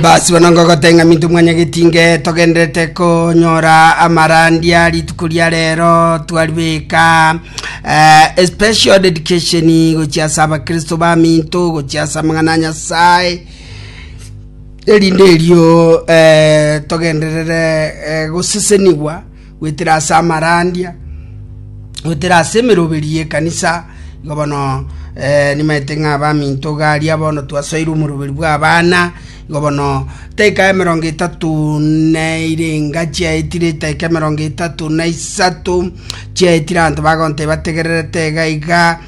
Basi bono ngogote ng'a minto mwanyageti nge togenderete konyora amarandia rituko ria rero twaribeka eh, special dedication gochia ase abakristo ba minto gochia ase amang'ana a nyasaye erinde erio eh, togenderere eh, gosesenigwa goetera ase amarandia, goetera ase emeroberi y'ekanisa. Igo bono eh, nimaete ng'a abaminto garia bono twasoire omoroberi bw'abana. Igo bono taika emerongo etato neire enga chiaetire, taika emerongo etato na isato chiaetire abanto bagonteba bategererete iga iga.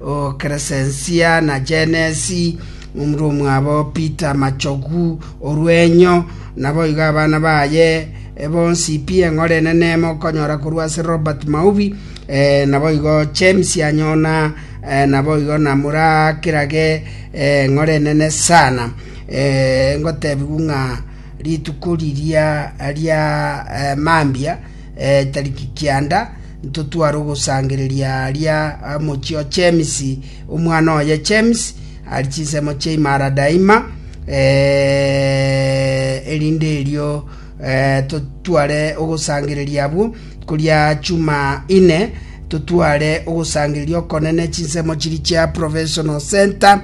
o Kresensia, na Jenesi, omura omwabo Peter Machogu o Rwenyo, naboigo abana baye bonsi pi. Eng'ora enene mokonyora korwa ase Robert Maubi, naboigo James Anyona, naboigo na morakirage eng'ora enene sana. Ngotebigwa ng'a rituko riria ria mambia, Tariki kianda ntotware ogosangereria aaria mochie o Chemisi, omwana oye Chemisi are chinsemo chia imara daima, erinde erio totware ogosangereria abwo. Koria chuma ine totware ogosangereria okonene chinsemo chiria chia Professional Centre,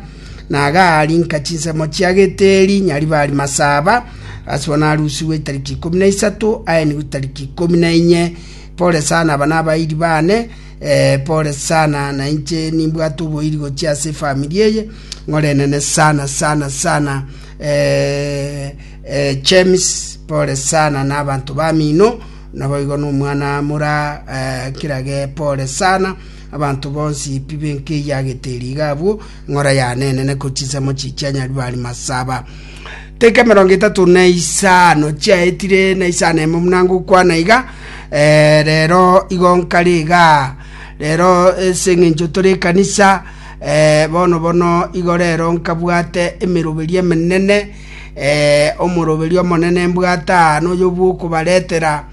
na agaarinka chinsemo chia Geteri, Nyaribari Masaba, Asua narusigwe itariki ikomi na isato, aenigwe itariki ikomi na inye. Pole sana, aba nabairi bane. Eh, pole sana, na inche nimbwate oboiri gochia ase efamiri eye. Ng'ora enene sana sana sana. Eh, eh, James, pole sana na abanto bamino, naboigo nomwana mora eh, kirage, pole sana. Abanto bonsi pi benkeyagete eriga abwo, ng'ora yane enene ko chinsemo chichia Nyaruari masaba. Teka emerongo etato na isano chiaetire na isano emo muna ngokwana iga, eh, rero igo nkare iga, rero ase eng'encho tore ekanisa, eh, bono bono igo rero nkabwate emeroberi emenene, eh, omoroberi omonene mbwate aa noyo bwokobaretera,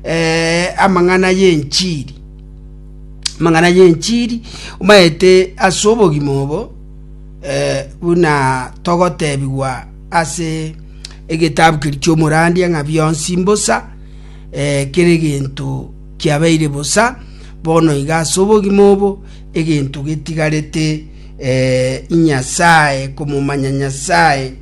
eh, amang'ana y'enchiri. amang'ana y'enchiri maete ase obogima obo, eh, buna togotebigwa ase egetabu keria ki'omorandia ng'a bionsi mbosa, eh, kera egento kiabeire bosa, bono iga ase obogima obo egento getigarete eh, inyasaye, komomanya Nyasaye.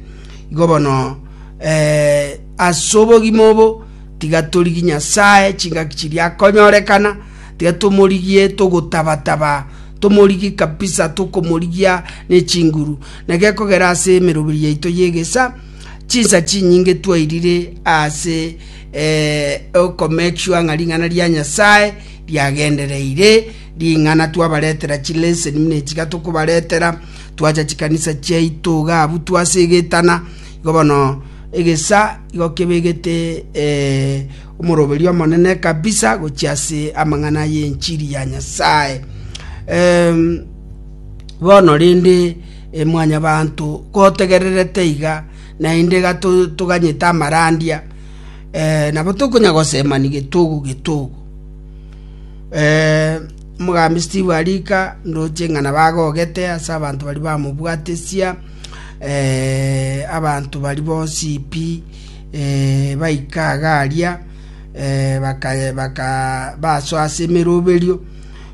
Igo bono eh, ase obogima obo tiga torigie Nyasaye chingaki chiria akonyorekana, Tiga tomorigie togotaba-taba, tomorigie kabisa, tokomorigia ne chinguru. Na gekogera ase emeroberi yaito y'egesaa, chinsa chinyinge twairire ase oko make sure ng'a ring'ana ria Nyasaye riagendereire, ring'ana twabaretera chi lesson buna echi iga tokobaretera, twacha chikanisa chiaito iga abwo twase egetana, igo bono egesaa igo kebegete omoroberio omonene kabisa gochia ase amang'ana y'enchiri ya Nyasae. Em, bono rende e, mwanyabanto gotegererete iga naende iga to- toganyete amarandia eh, nabo tokonya gosemani getogo getogo Eh, omogambi steve arika ndoche ng'a nabo agogete ase abanto baria bamobwatesia eh, abanto bari bonsi pi Baika iga aria bakabaaswa ase emeroberio,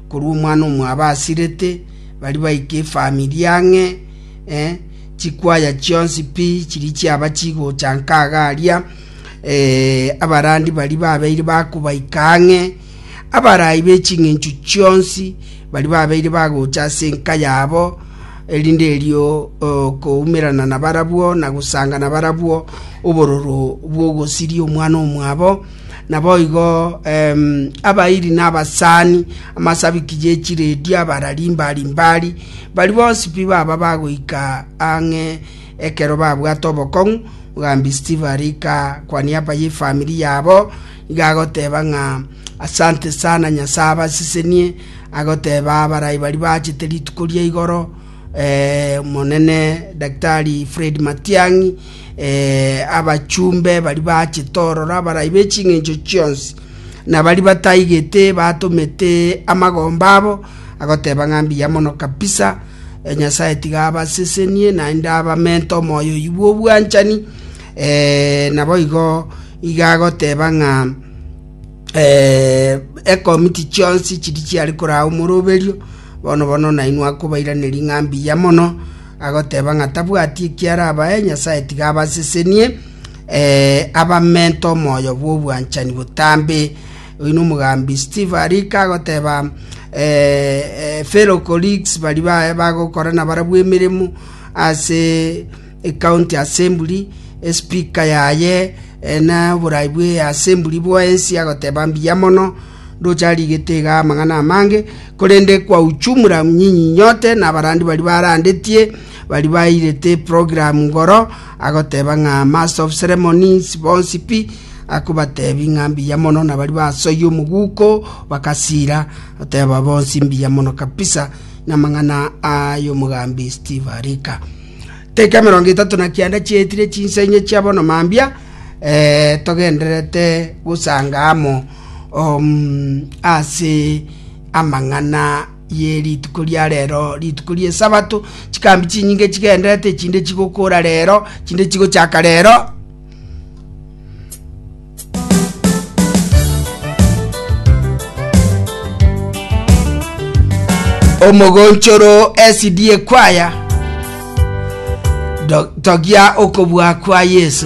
korwa omwana omwabo asirete, baria baika efamiri ang'e, chikwaya chionsi pi chiria chiaba chigocha nka iga aria, abarandi baria babeire bakobaika ang'e. Abarai be ching'enchu chionsi baria babeire bagocha ase enka yabo, erinde erio koumerana nabarabwo na gosanga nabarabwo obororo bw'ogosiria omwana omwabo. Naboigo abairi na abasani, amasabiki ye chiredio, abarari mbari mbari, bari bonsi pi baba bagoika ang'e ekero babwate obokong'u, mogambi Steve arika kwa niaba ye famiri yabo, Nigo agoteba ng'a, Asante sana, Nyasae abasesenie, agoteba abarai baria bachete rituko ria igoro, Omonene Daktari Fred Matiang'i, abachumbe baria bachete ororo, abarai be ching'encho chionsi, na baria bataigete batomete amagomba abo, agoteba ng'a mbuya mono kabisa, Nyasae tiga abasesenie, naende abamente omoyo oyio bw'obwanchani. Ee, naboigo iga agoteba ng'a ekomiti chionsi chiria chiare koraa omoroberio, bono-bono nainwe akobairaneria ng'a mbuya mono, agoteba ng'a tabwati ekiarabae, Nyasae tiga abasesenie, ee, abamente omoyo bw'obwanchani botambe. Oyio nomogambi Steve arika agoteba fellow colleagues baria bagokorana barabwo emeremo ase Ekaunti y'Asemburi, espika yaye, na oboraai bw'easemburi bw'ensi agoteba mbuya mono. Ndoche arigete iga amang'ana amange, korende kwa ujumla nyinyi nyote nabarandi baria barandetie baria bairete program igoro, agoteba ng'a Master of Ceremonies bonsi pi akobatebi ng'a mbuya mono na baria basoyia omoguko bagasira goteba bonsi mbuya mono kabisa namang'ana ay'omogambi Steve Arika. Teka emerongo etato na kianda chiaetire chinsa inye chia bono mambia eh, togendererete gosanga amo um, ase amang'ana ye rituko ria rero rituko rie sabato chikambi chinyinge chigenderete chinde chigokora rero chinde chigochaka rero omogonchoro esidie kwaya Do- togia okobua kwa yesu